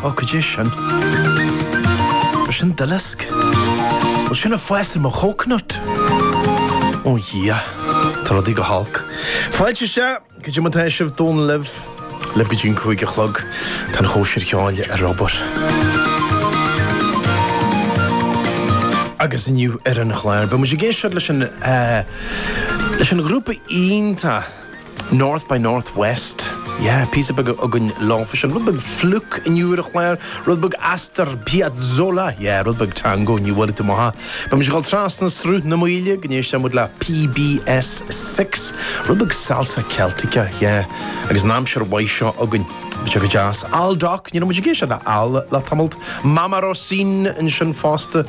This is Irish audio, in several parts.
Ó, cad é sin? Bhuel, sin duileasc. An bhfuil sin ag fás ar mo chócanut. Ó, dhia. Tá rudaí go holc. Fáilte isteach. Cad é mar atá sibh? Dónall libh, libh go dtí an cúig a chlog, tá an Chóisir Cheoil ar obair. Agus inniu ar an chlár, beidh muid ag éisteacht leis an, leis an ghrúpa iontach, North by Northwest. Yeah, píosa beag againn leofa sin. Rud beag Flook inniu ar an chlár, rud beag Astor Piazzolla, yeah, rud beag Tango inniu uilig, tá mo tha. Beidh muid ag dul trasna Sruth na Maoile go n-éisteann muid le PBS Six, rud beag Salsa Celtica, yeah, agus an aimsir mhaith seo againn, beidh sé go deas. Aldoc, ní raibh muid ag éisteacht le Al le tamalt. Mama Rosin ansin fosta.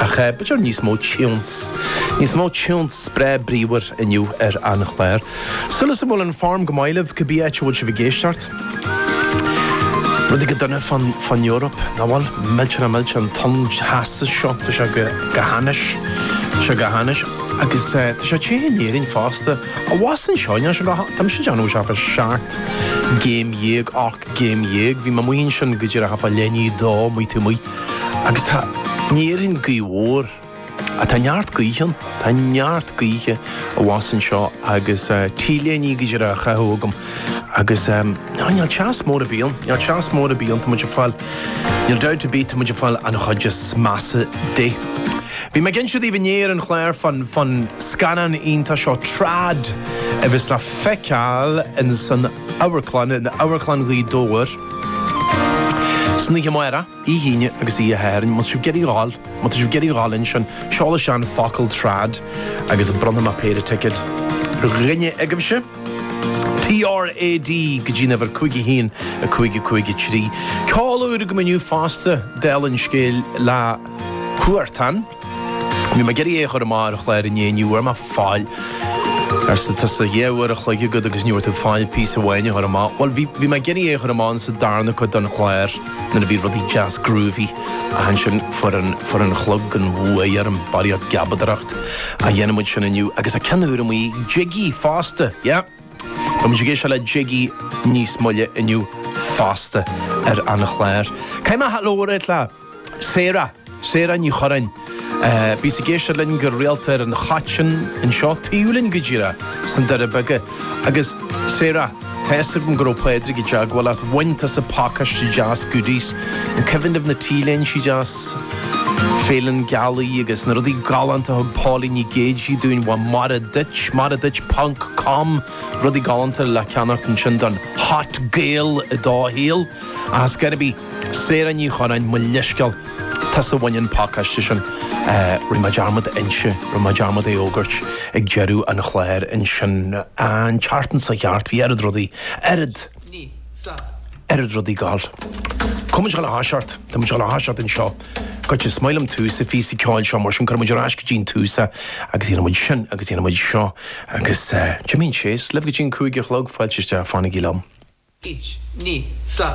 Ach b'fhéidir níos mó tiúns, níos mó tiúns breá bríomhar inniu ar an chlár. Súil agam go bhfuil an form go maith libh, cibé áit a bhfuil sibh ag éisteacht. Rudaí go dona fán Eoraip, nach bhfuil? Millteanach, millteanach, an tonn teasa seo, tá sé go hainnis, tá sé go hainnis. Agus tá sé te in Éirinn fosta, abhus anseo, níl sé go hainnis, tá mise ag déanamh thart fá seacht gcéim déag, ocht gcéim déag, bhí mé ag maíomh sin go díreach fá leithní dó, maith tú maith. Agus tá in Éirinn gaoth mhór. Á, tá neart gaoithe ann. Tá neart gaoithe abhus anseo agus T-léine go díreach á chaitheamh agam agus, á, níl teas mór ar bith ann. Níl teas mór ar bith ann. Tá muid ag fáil, níl dabht ar bith, tá muid ag fáil an chuid is measa di. Bhí mé ag insint daoibh inné ar an chlár fan, fan scannán iontach seo Trad a bheas le feiceáil ins an Amharclann, in Amharclann Ghaoth Dobhair. San oíche amárach, Oíche Aoine agus Oíche Shathairn, má tá sibh ag iarraidh a ghabháil, má tá sibh ag iarraidh a ghabháil ansin, seol isteach an focal Trad agus bronnfaidh mé péire ticket ar dhuine agaibhse. TRAD go dtí an uimhir 51553. Ceol úr agam inniu fosta, dála an scéil, le Huartan. Bhí mé ag iarraidh é a chur amach ar an chlár inné, ní bhfuair mé faill. Arsa tusa, dhá uair a chloig agat agus ní bhfuair tú faill píosa amháin a chur amach. Bhuel, bhí, bhí mé ag iarraidh é a chur amach sa darna cuid den chlár, nuair a bhí rudaí deas groovy, ach ansin fuair an, fuair an chlog an bhuaidh orm, barraíocht geabadaireacht ach déanfaidh muid sin inniu, agus tá ceann úr amuigh ag Jiggy fosta, yeah. Tá muid ag éisteacht le Jiggy níos moille inniu fosta ar an chlár. Caitheann mé hat lómhar ar chlár. Sarah, Sarah Ní Churráin. Bhíos ag éisteacht linn go rialta ar an Choitín anseo taobh linn go díreach sna Doirí Beaga. Agus Sarah, tá fhios agam go raibh Pádraig i dteagmháil leat, bhain tusa pacáiste deas goodies, an cuimhin libh na T-léinte deas, Féile na Gealaí agus na rudaí galánta a thug Pauline Nic Géidigh dúinn, bhuel Mora duit, Mora duit ponc com, rudaí galánta le ceannacht ansin don hot Gael i do shaol. Ach it's gotta be. Sarah Ní Churráin, Mo leithscéal, tusa a bhain an pacáiste sin. Rinne mé dearmad a inse, rinne mé dearmad é fhógairt ag deireadh an chláir ansin. An tseachtain seo chuaigh thart, bhí oiread rudaí, oiread, oiread rudaí ag gabháil. Cuimhnigh an áis ort, tá muid an áis ort anseo, goitse is maith liom tús an phíosa ceoil seo, mar sin cuirfidh muid ar ais go dtí an tús é agus dhéanfaidh muid sin agus dhéanfaidh muid seo agus Jimín Chase libh go dtí an cúig a chlog, fáilte isteach, fanaigí liom. Each Ní sa.